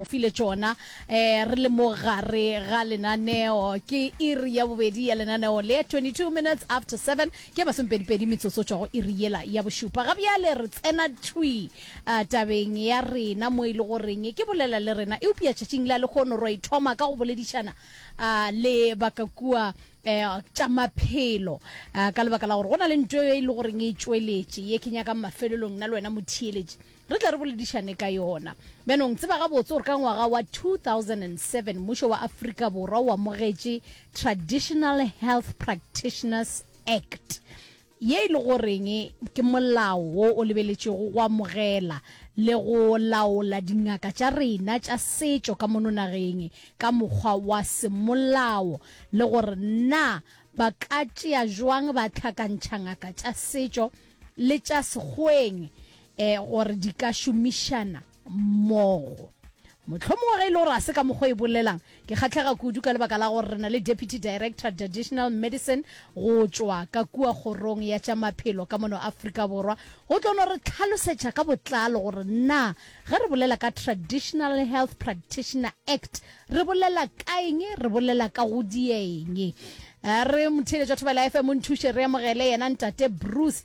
O file tšona re le mo gare ga lenaneo. Ke iri ya bobedi ya lenaneo le, 22 minutes after seven, ke masomepedipedi metsotso tšwa go iri yela ya bošupa. Ga bjale re tsena thwi tabeng ya rena mo e le goreng ke bolela le rena. Eupša tšatšing la lehono ro e thoma ka go boledišana le ba ka kua tša maphelo ka lebaka la gore go na le nto e le goreng e tšweletše ye ke nyakang mafelelong nna le wena motheeletši Re tle re boledišane ka yona. Bjanong, tseba gabotse gore ka ngwaga wa 2007 mmušo wa Afrika Borwa o amogetše Traditional Health Practitioners Act, ye e le goreng ke molao wo o lebeletšwego go amogela le go laola dingaka tša rena tša setšo ka mono nageng ka mokgwa wa semolao le gore na ba ka tšea bjang ba hlakantšha ngaka tša setšo le tša sekgweng e gore di ka šomišana mmogo. Mohlomongwe ge e le gore a se ka mokgwa e bolelang, ke kgahlega kudu ka lebaka la gore re na le Deputy Director Traditional Medicine go tšwa ka kua Kgorong ya tša Maphelo ka mono Afrika Borwa go tlo no re tlhalosetša ka botlalo gore na ge re bolela ka Traditional Health Practitioner Act re bolela ka eng, re bolela ka go dieng. Re motheeletša thobela FM o nthuše re amogele yena Ntate Bruce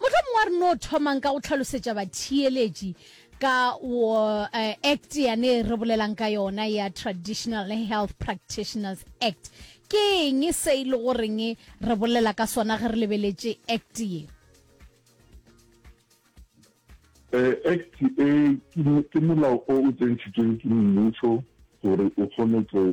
Mohlomongwe a re no thomang ka go tlhalosetša batheeletši ka wo, uh, Act yane e re bolelang ka yona ya Traditional Health Practitioners Act. Ke eng se e le goreng re bolela ka sona ge re lebeletše Act ye? Uh, Act e ke molao o o tsentšhitšweng ke mmušo gore o kgone go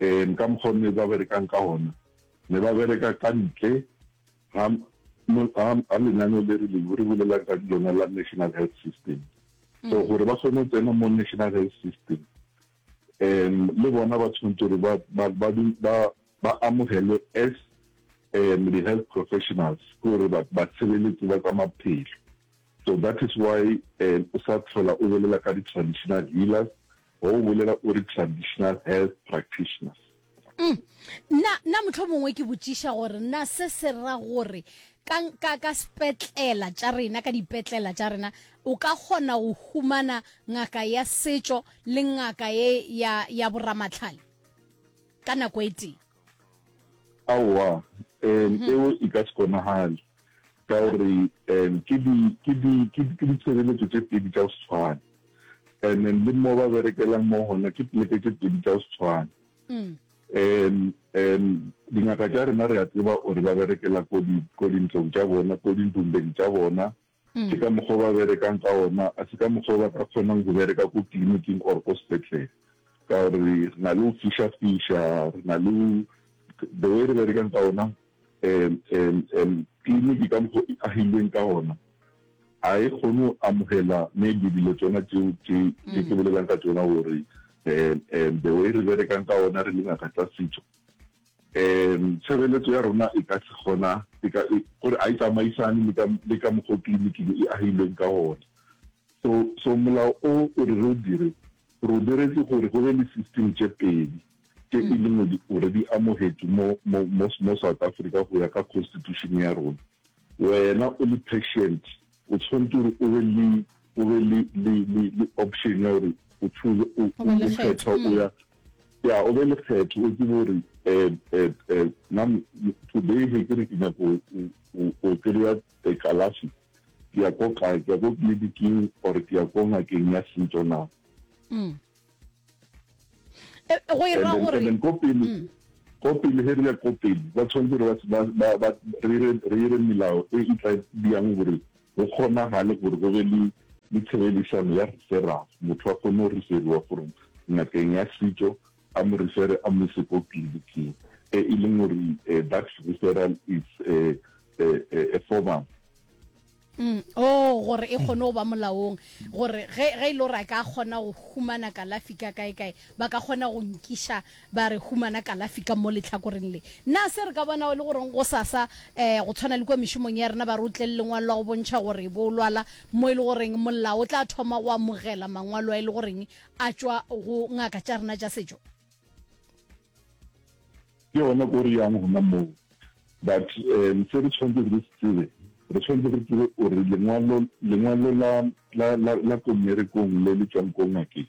um ka mokgwa o ne ba berekang ka gona ne ba bereka ka ntle ga lenaneo le re le re bolelang ka lona la national health system so gore ba kgone go tsena mo national health system um le bona ba tshwanetse gore ba amogelwe as um di-health professionals ke gore batshebeletsi ba tsa maphelo so that is why um o sa tlhola o bolela ka di-traditional healers Wa go bolela o re traditional health practitioners. Uhm, na, na mohlomongwe ke botšiša gore na se se ra gore ka, ka, ka sepetlela tša rena, ka dipetlela tša rena, o ka kgona go humana ngaka ya setšo le ngaka ye ya, ya boramahlale ka nako e tee? aowa um eo e ka se konagale ka gore um ke ditshebeletso tse pedi tsa go se tshwane and then le mo ba berekelang mo gona ke pleke tse pedi tsa go se tshwane um mm. um dingaka tša rena re a tseba gore ba berekela ko dintlong tša bona ko dintlong tsa bona Ke ka mokgwa o ba berekang ka ona, a se ka mokgwa o ba ka kgonang go bereka ko tliliniking or ko sepetlele. Ka gore re na le go fiša-fiša, re na le the way re berekang ka ona, tliliniki ka mokgwa o e agilweng ka ona, ga e kgone go amogela maybe dilo tsona tse ke bolelang ka tsona gore the way re berekang ka ona re le ngaka tsa setso. Ee, tshebeletso ya rona e ka se gona e ka e gore a e tsamaisane le ka le ka mokgwa o tleliniki e e agilweng ka gona. So so molao o o re re o dire gore o diretse gore go be le system tše pedi tše e leng gore o re di amogetše mo mo mo mo South Africa go ya ka constitution ya rona. Wena o le patient o tshwanetse gore o be le o be le le le le option ya gore o choose o o kgetha o ya ya o be lekgetho o tsebe gore um today ge ke re ke nyako o kry-a kalafi ke ya ko kae ke ya ko tleliniking or ke ya ko ngakeng ya setso na mm. eh, go ira gore ko pele mm. ko pele ge re ya ko pele ba tshwanetse gore re ire melao e e tla bjang gore go kgonagale gore go be le le tshebedisano ya referral, motho a kgone go referiwa gore ngakeng ya setšo a mo refere a mo ise ko tleliniking, e e leng gore eh, that referral is a, eh, a, eh, a formal Mm. Oh, gore e kgone go ba molaong gore ge e le gore a ka kgona go humana kalafi ka kae kae ba ka kgona go nkiša ba re humana kalafi ka mo lehlakoreng le. Na se re ka bonago e le goreng gosasa, um go tshwana le kua mešomong ya rena, ba re o tle le lengwalo la go bontšha gore bo o lwala, mo e le goreng molao o tla thoma go amogela mangwalo a e le goreng a tšwa go ngaka tša rena tša setšo? Ke gona ko re yang gona moo. But um se re tshwanetseng re se tsebe, re tshwanetse re tsebe gore lengwalo, lengwalo la, la, la, la ko mmerekong le le tšwang ko ngakeng,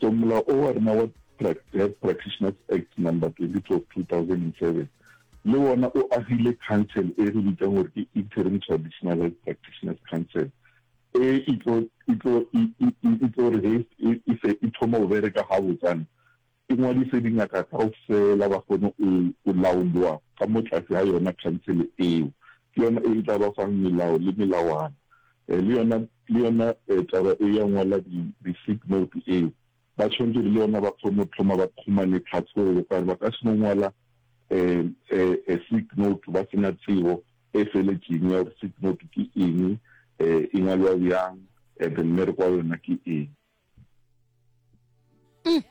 So molao o wa rena wa Health Practitioners Act number 22 of 2007 le wona o agile council e re bitsang gore ke Interim Traditional Health Practitioners Council e e tlo e tlo e e tlo re he e, e se e thoma go bereka ga botsana e ngwadise dingaka kao fela ba kgone go laolwa ka mo tlase ga yona council eo ke yona e e tla ba fang melao le melawana Le yona, le yona taba e ya go ngwala di, di sick note e, ba tshwanetse gore le yona ba kgone go thoma ba khumane tlhatse gore le gore ba ka se no ngwala a sick note ba se na tsebo e feletšeng ya gore sick note ke eng, e ngwalwa bjang, and then re kwa yona ke eng. mm.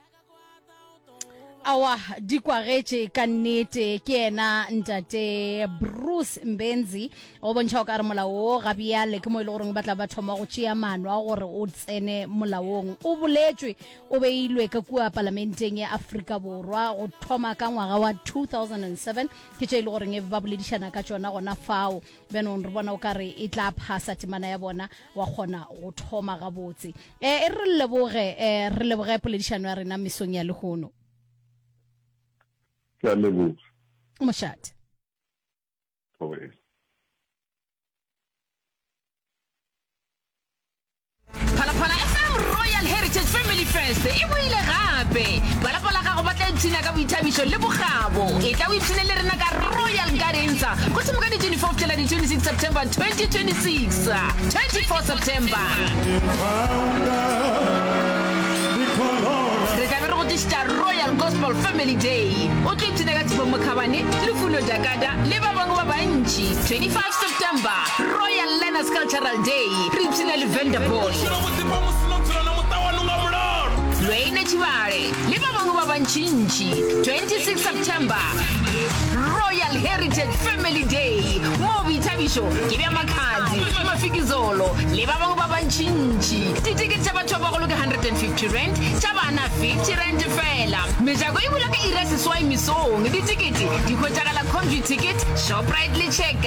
awa di kwagetše ka nnete ke ena ntate bruce mbenzi o bontšha o ka re molao o ga bjale ke mo e le goreng ba tla ba thoma go tšea maano a gore o tsene molaong o boletswe o beilwe ka kua palamenteng ya aforika borwa go thoma ka ngwaga wa 2007 ke tše e le goreng e ba boledišana ka tšona gona fao Bjanong re bona o ka re e tla phasa temana ya bona, wa kgona go thoma gabotse. E re re leboge, e re leboge poledišano ya rena mesong ya lehono. Ke a leboga. Mošate. Thobela. Phalaphala FM Royal Heritage Family Fest e boile gape. Balapa la gago ba tla ipshina ka boithabišo le bokgabo. E tla o ipshine le rena ka Royal Gardens go thoma ka di 24 go fihlela di 26 September 2026. 24 September re tla be re go tlišitša Royal Gospel Family Day. O tlo ipshina ka Tshifo Mokhabane, Lufuno Jakada le ba bangwe ba bantši. 25 September Royal Learners Cultural Day, re ipshina le Venter Bos, Lweine Tshibale le ba bangwe ba bantšintši, 26 September, Royal Heritage Family Day, moo boithabišo ke bja Makhadzi, Mafikizolo le ba bangwe ba bantšintši. Ditikete tša batho ba bagolo ke R150, tša bana R50 feela. Mejako e bula ka iri ya seswai mesong. Ditikete di hwetšagala Comvuticket, Shoprite le Checkers.